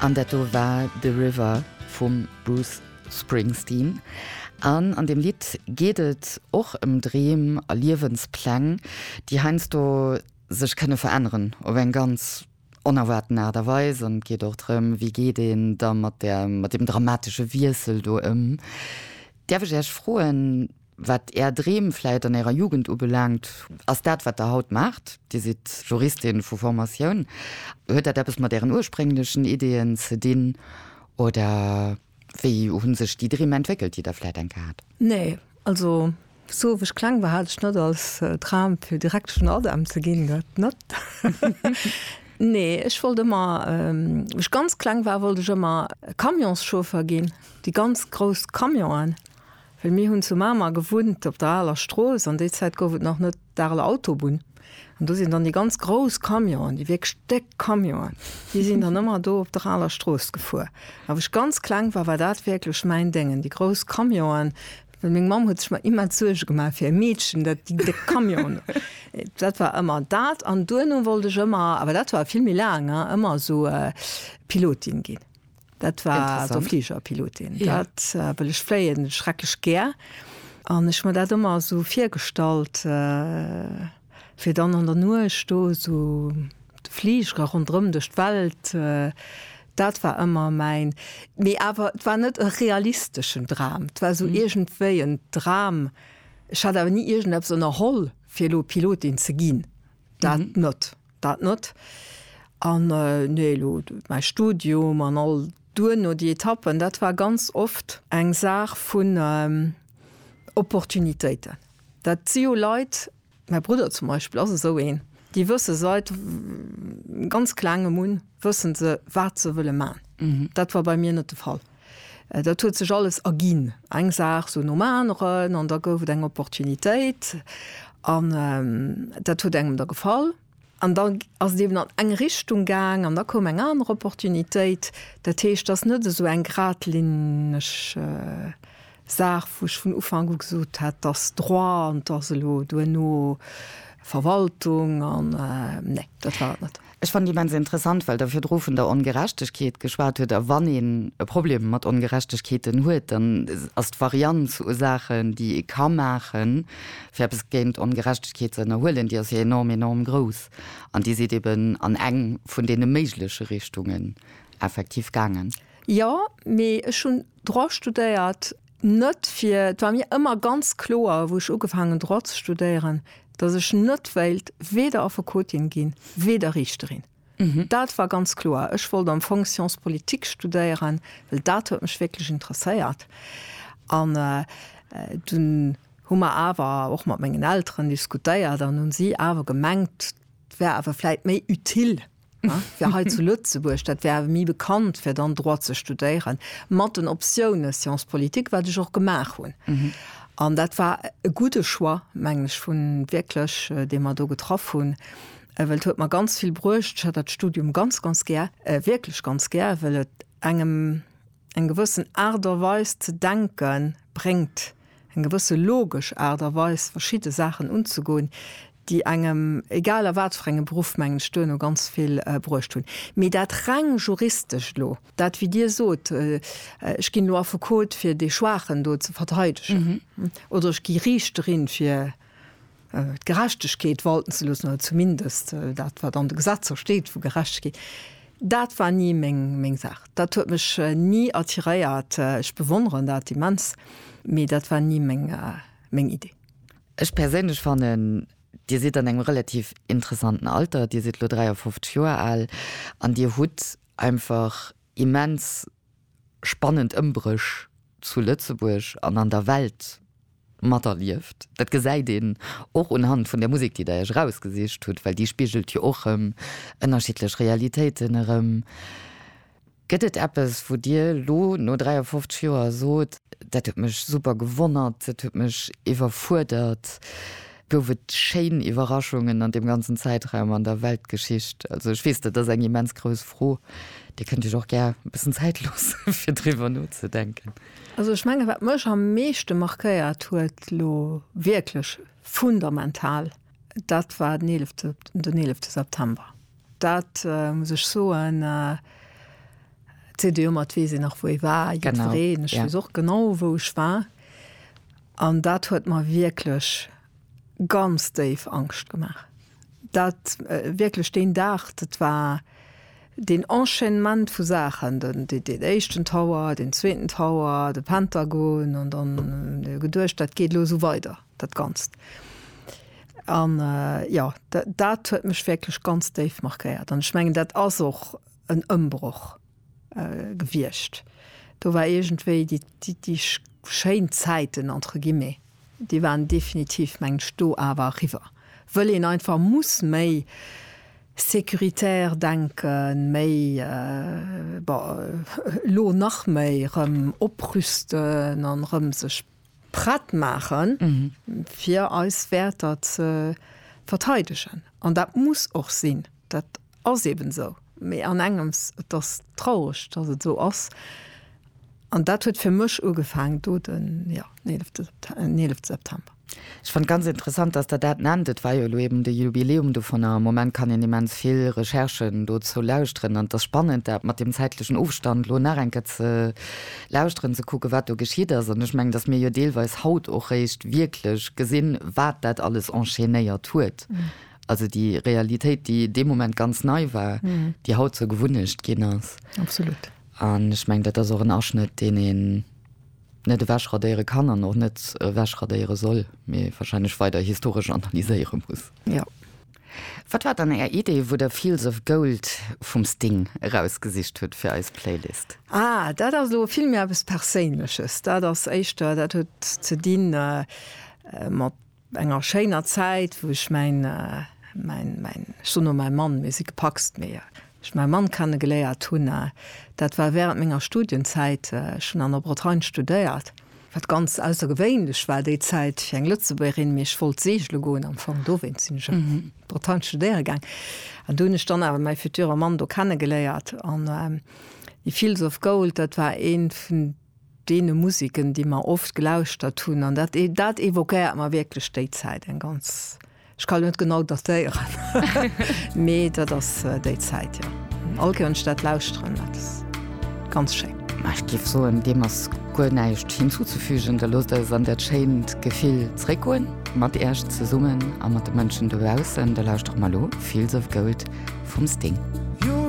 An dat do war The River vum Bruce Springsteen. An an deem Lidd geet et och ëm Dreem a Liewenspläng, déi heiansdo sech kënne veränneren op eng ganz onerwaarten Aart a Weis. An et geet och drëm, wéi geet een da mat deem dramatesche Wiessel do ëm. Däerf ech Iech froen, Wat Är Dreem vläit an Ärer Jugend ubelaangt, ass dat, wat Der haut maacht, Dir sidd Juristin vu Formatioun, huet dat eppes mat Ären ursprénglechen Ideeën ze dinn oder wéi hu sech déi Dreem entwéckelt, déi Der vläit enke hat? Nee, also sou wou ech kleng war, hat ech net als Dram fir Direktesch an ADEM ze ginn, dat net. Nee, ech wollt ëmmer, wou ech ganz kleng war, wollt ech ëmmer Camionschauffer ginn, déi ganz grouss Camionen. Well mir hunn zu Mamer gewunnt, op der aler Strooss, an déi Zäit gouf et nach net d'Areler Autobunn. An do sinn dann déi ganz grouss Camionen, déi wierklech déck Camionen, déi sinn dann ëmmer do op der aler Strooss gefuer. A wou ech ganz kleng war, war dat wierklech mäin Déngen, déi grouss Camionen. Well meng Mamm huet sech ëmmer immens Suerge gemaach fir är Meedchen, dat déi déck Camionen. Dat war ëmmer dat. An duerno wollt ech ëmmer, awer dat war vill méi laang, ëmmer esou Pilotin ginn. Dat war also Fligerpilotin. Ja. Dat äh, well ech fléien schrecklech gär an ech mir dat ëmmer so virgestallt äh, fir dann an der Nuecht do so de Fliger rondrëm duerch d'Welt. Äh, dat war ëmmer mäin mee awer et war net e realisteschen Dram. Et war so mhm. iergendwéi en Dram. Ech hat awer ni iergendeppes ënnerholl fir lo Pilotin ze ginn. Dat mhm. net. Dat net. An, nee, elo mäi Studium an all duerno déi Etappen, dat war ganz oft eng Saach vun Opportunitéiten. Dat si jo Leit, mäi Brudder zum Beispill ass esou een, déi wësse seit ganz Klengem un, wësse se, wat se wëlle man. Dat war bei mir net de Fall. Dat huet sech alles erginn, eng Saach sou nom aneren, an da gouf et eng Opportunitéit, an dat huet engem da gefall, an da ass et eben an eng Richtung gaang, an da koum eng aner Opportunitéit. Dat heescht, et ass net esou eng gradlinneg Saach, wou ech vun Ufank u gesot hat, dass Droit an dass elo duerno Verwaltung an, nee, dat war et net. Ech fannen immens interessant, well Der virdru vun der Ongerechtegkeet geschwat hutt. A wann een e Problem mat Ongerechtegkeeten huet, dann ass d'Varianz u Saachen, déi ee ka maachen, fir eppes géint Ongerechtegkeet ze ënnerhuelen, déi ass jo enorm, enorm grouss. An Dir sidd eben an eng vun deene méigleche Richtungen effektiv gaangen. Jo, mee ech hunn Droit studéiert, net fir, et war mir ëmmer ganz kloer, wou ech ugefaang hunn Droit ze studéieren, datt ech net wéilt weder Affekotin ginn, weder Riichterin. Dat war ganz kloer. Ech wollt am Fong Sciences politiques studéieren, well dat huet mech wierklech interesséiert. An dunn hu mer awer och mat mengen Elteren diskutéiert an hunn si awer gemengt, 't wär awer vläit méi utile, Fir hei zu Lëtzebuerg, dat wär awer méi bekannt, fir dann Droit ze studéieren, mat den Optiounen Sciences politiques, wat ech och gemaach hunn. An dat war e gudde Choix, mengen ech, vun wierklech, dee mer do getraff hunn, well et huet mer ganz vill bruecht. Ech hat dat Studium ganz, ganz gär, wierklech ganz gär, well et engem, Eng gewëssen Aart a Weis ze denke bréngt, eng gewësse logesch Aart a Weis verschidde Saachen unzegoen, déi engem, egal a wat fir engem Beruff, mengen ech, duerno ganz vill bruecht hunn. Mee dat reng juristescht elo, dat wéi Dir sot, ech ginn elo Affekot fir dee Schwaachen do ze verteidegen oder ech gi Riichterin fir d'Gerechtegkeet walten ze loossen, oder zumindest dat, wat an de Gesetzer steet, vu Gerechtegkeet, dat war ni meng Saach. Dat huet mech ni attiréiert. Ech bewonneren dat immens, mee dat war ni meng Idee. Ech perséinlech fannen, Dir sidd an engem relativ interessanten Alter, Dir sidd elo 53 Joer al an Dir hutt einfach immens, spannend Ëmbréch zu Lëtzebuerg an an der Welt materlieft. Dat gesäit een och unhand vun der Musek, déi Der Iech erausgesicht hutt, well déi spigelt jo och erëm ënnerschiddlech Realitéiten erëm. Gëtt et eppes, wou Dir elo no 53 Joer sot, dat huet mech super gewonnert, dat huet mech iwwerfuerdert, Gouf et schéin Iwwerraschungen an deem ganzen Zäitraum an der Weltgeschicht? Also ech weess, dat ass eng immens grouss Fro. Dir kënnt iech och gär e bëssen Zäit loosse fir driwwer nozedenken. Also ech mengen, wat mech am meeschte markéiert huet, elo wierklech fundamental, dat war den eelefte September. Dat muss ech soen. CDU mat weess een nach wou ee war, jiddwereen. Ech weess och genau wou ech war an dat huet mer wierklech ganz déif Angscht gemaach. Dat wierklech deen Dag, dat war deen Enchaînement vu Saachen, den den éischten Tower, deen zweeten Tower, de Pentagon an dann huet ee geduecht, dat geet elo esou weider. dat Ganzt. An jo, dat huet mech wierklech ganz déif markéiert. An ech mengen, dat ass och en Ëmbroch gewiescht. Do war iergendwéi déi schéin Zäiten, entre guillemets, déi waren definitiv, mengen ech, do awer eriwwer, wëll een einfach muss méi sécuritaire denken, méi, bon, elo nach méi, erëm oprüsten an erëm sech, prett maachen, fir eis Wäerter ze verteidegen. An dat muss och sinn, dat ass eben esou. Mee an engems, et ass traureg, datt et esou ass, an dat huet fir mech ugefaangen do den, jo, den eelefte September. Ech fand ganz interessant, dass Der dat nennt. Et war jo elo eben de Jubiläum dovun a am Moment kann een immens vill Recherchen dozou lauschteren an et ass spannend, dat mat deem zäitlechen Ofstand elo nach eng Kéier ze lauschteren, ze kucken, wat do geschitt ass. An ech mengen, dass mir jo deelweis haut och réischt wierklech gesinn, wat dat alles enchaînéiert huet, also déi Realitéit, déi dee Moment ganz nei war, déi haut zur Gewunnecht ginn ass. Absolut. An ech mengen, dat ass och en Aschnëtt, deen een. Net ewech radéiere kann an och net ewech radéiere soll, mee wahrscheinlech weider historesch analyséiere muss. Jo. Wat war dann Är Idee, wou Der Fields of Gold vum Sting erausgesicht hutt fir eis Playlist? Ah, dat ass elo vill méi eppes Perséinleches. Dat ass éischter, dat huet ze dinn mat. enger schéiner Zäit wou ech mäin mäin mäin ech soen elo mäi Mann, mir si gepacst, mee ech mäi Mann kennegeléiert hunn, dat war wärend menger Studienzäit, ech hunn an der Bretagne studéiert, wat ganz aussergewéinlech war déi Zäit fir eng Lëtzebuergerin, mee ech wollt segele goen am Fong, dowéinst sinn ech an d'Bretagne studéiere gaang an do hunn ech dann awer mäi future Mann do kennegeléiert an He feels of gold, dat war ee vun deene Musiken, déi mer oft gelauschtert hunn, an dat, dat évoquéiert mer wierklech déi Zäit, eng ganz, ech kann net genau datéieren, mee dat ass déi Zäit, jo. All Kéier, wann ech dat lauschteren, dat ass ganz schéin. Ma ech géif soen, deem ass guer näischt hinzuzefügen. Da loosst eis an dat schéint Gefill zréckgoen, mat Iech zesummen a mat de Mënschen dobaussen. Da lauschtere mer elo Fields of Gold vum Sting.